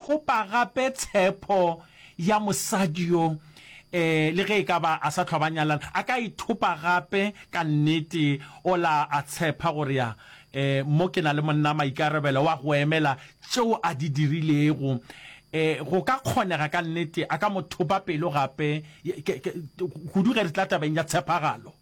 Kopa gape tshepo ya mosadi yo. Ee, le ge e ka ba a sa hlwa ba nyalana, a ka ithopa gape ka nnete. O la a tshepa go rea, Ee, mo ke na le monna, maikarabelo wa go emela tšeo a di dirilego. Ee, go ka kgonega ka nnete a ka mo thopa pelo gape, kudu ge re tla tabeng ya tshepagalo.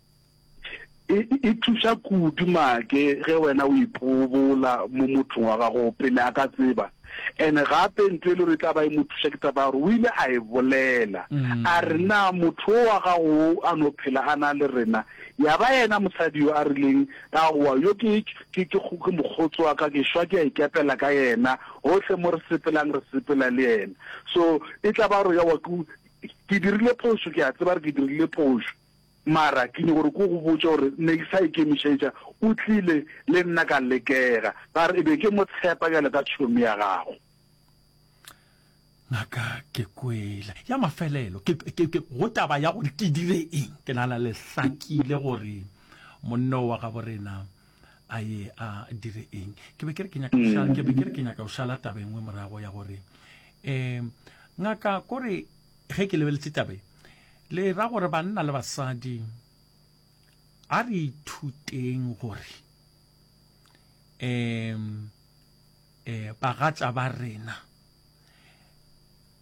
E, e thuša kudu make ge wena o ipobola mo mothong wa gago pele a ka tseba. Ene gape ntho e le gore e tla ba e mo thuša ke taba ya gore o ile a e bolela mm. a re na motho o wa gago a no phela a na le rena ya ba yena mosadi yo a rileng a goa yo ke ke ke mokgotsi wa ka ke shwa ke a ikepela ka yena gotlhe mo re sepelang re sepela le yena so e tla ba gore ya wa ke dirile phoso ke a tseba re ke dirile phoso Mara ke nyoko gore ko go botša gore ne ke sa ikemišetša, o tlile le nna ka lekega, ba re e be ke mo tshepa bjalo ka tšhomi ya gago. Ngaka ke kwele ya mafelelo ke, ke, ke go taba ya gore ke dire eng, ke nana le hlakile gore monno wa gabo rena a ye a dire eng. Ke be ke re ke nyaka go šala, ke be ke re ke nyaka go šala taba engwe morago ya gore, eh, ngaka kore Ge ke lebeletše taba e, le ra gore banna le basadi a re ithuteng gore um eh bagatša ba rena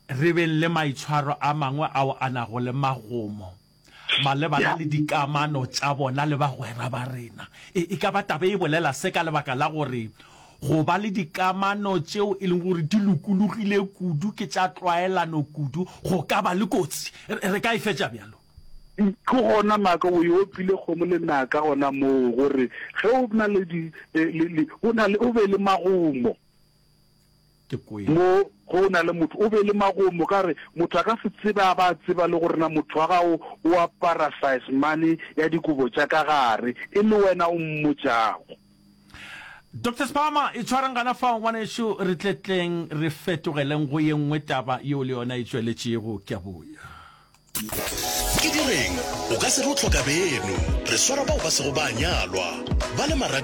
re beng le maitshwaro a mangwe ao a nago le magomo malebana le dikamano tša bona le bagwera ba rena. E, e ka ba taba e bolela se ka lebaka la gore go ba le dikamano tšeo e leng gore di lokologile kudu ke tša tlwaelano kudu go ka ba le kotsi. Re ka e fetša bjalo. Ke gona maaka o e opile kgomo le naka gona moo gore ge o na le di, e, le, le, o, na le, o be le magomo. Ke kwele. Mo ge o na le motho, o be le magomo ka gore motho a ka se tsebe a ba a tseba le gore na motho wa gago o apara size mane ya dikobo tša ka gare, e le wena o mmotšago. Doctor Sphama, itshwareng gana fao ngwanešu, re tle tleng re fetogeleng go ye nngwe taba yeo le yona e tšweletšego. Ke a boya. Ke direng? O ka se re o hloka beno. Re swara bao ba sego ba a nyalwa, ba le marato.